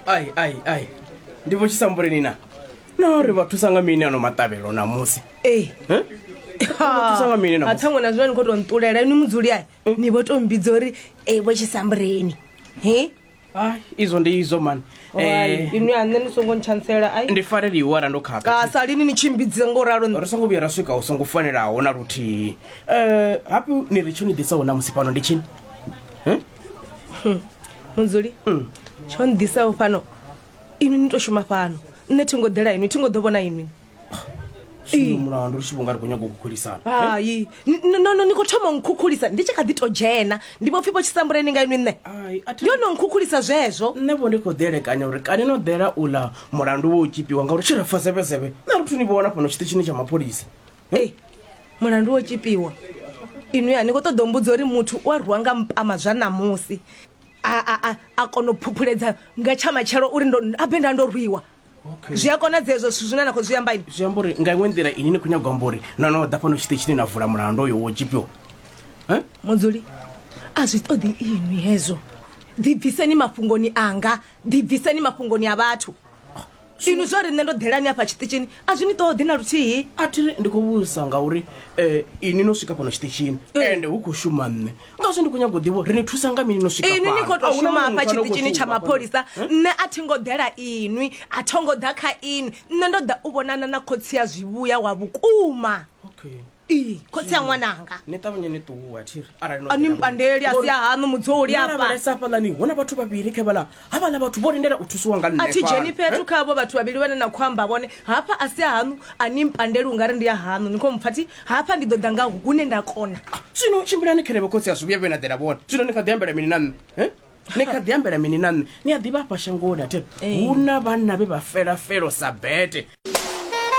ai ai ai ndi vho tshisambuleni na no ri vha thusa nga mini ano maṱavhelo namusi ee Eh? Vha thusa nga mini namusi athango na zwino ni khou tou nṱulela ni mudzuli ai ni vho tou mbidza uri e vho tshisambureni he Ai, izwo ndi izwo mani Eh, inwi a nṋe ni songo ntshansela ai ndi farela iwara ndo khakha kasa lini ni tshimbidze ngo ralo nṋe. ri songo vhuya ra swika u songo fanelaho na luthihi um hape ni ri tsho ni ḓisaho namusi fhano ndi tshini Hmm. mudzuli hmm. tsho nḓisaho fhano inwi ni to shuma fhano nṋe thi ngo ḓela inwi thi ngo ḓo vhona inwi mulandu ri tshi vhonga ri khou nyaga u khukhulisa hai nono ni khou thoma nkhukhulisa ndi tshi kha ḓi to dzhena ndi vho pfhi vho tshisambuleni nga inwi nṋe ndi yo no nkhukhulisa zwezwo nṋe vho ndi khou ḓielekanya uri kani no ḓela u ḽa mulandu wo u tshipiwa ngauri tshi ri fa zevhezevhe nṋe ri thu ni vhona fhano tshiṱitshini tsha mapholisa ei mulandu wo tshipiwa inwi a ni khou ṱoḓa umbudza uri muthu u a rwiwa nga mpama zwa ṋamusi a kona u phuphuledza nga tsha matshelo uri abe nda ndo rwiwa zwi a konadzea ezwo zwithu zwine na khou zwi amba ini zwi amba uri nga iṅwe nḓila ini ni khou nyagwa amba uri no no ḓa fhano tshite tshine na vula mulandu oyo wo tshipiwa mudzuli a zwi ṱoḓi inwi hezwo ḓibviseni mafhungoni anga ḓibviseni mafhungoni a vhathu inwi zwa ri nṋe ndo ḓelani afha tshiṱitshini a zwi ni ṱoḓi na luthihi a thi ri ndi khou vhudzisa ngauri um ini no swika fhano tshiṱitshini ende hu khou shuma nṋe ngazwo ndi khou nyago ḓivho ri ni thusa nga mini no swika inwi ni khou to shuma afha tshiṱitshini tsha mapholisa nṋe a thi ngo ḓela inwi a tho ngo ḓa kha inwi nṋe ndo ḓa u vhonana na khotsi ya zwivhuya wa vhukuma okay. Ii, khotsi a ṅwananga ni ṱavhanye ni ṱuwa thiri arali no a ni fhela mpandeli a si a haṋu mudzoli afha lavhelesa hafhaḽani hu na vhathu vhavhili kha vhala havhala vhathu vho lindela u thusiwa nga nṋe a thi dzheni fhano. fhethu kha avho vhathu vhavhili vhane na khou amba vhone hafha a si a haṋu a ni mpandeli u nga ri ndi a haṋu ni khou mpfa thi hafha ndi ḓo ḓa nga hune nda kona zwino tshimbilani khelevho khotsi a zwi vhuya vhe na ḓela vhone zwino ni kha ḓi ambela mini na nṋe eh? ni kha ḓi ambela mini na nṋe ni a ḓivha afha shangoni athe hu na vhanna vhe vha fela felo sa bete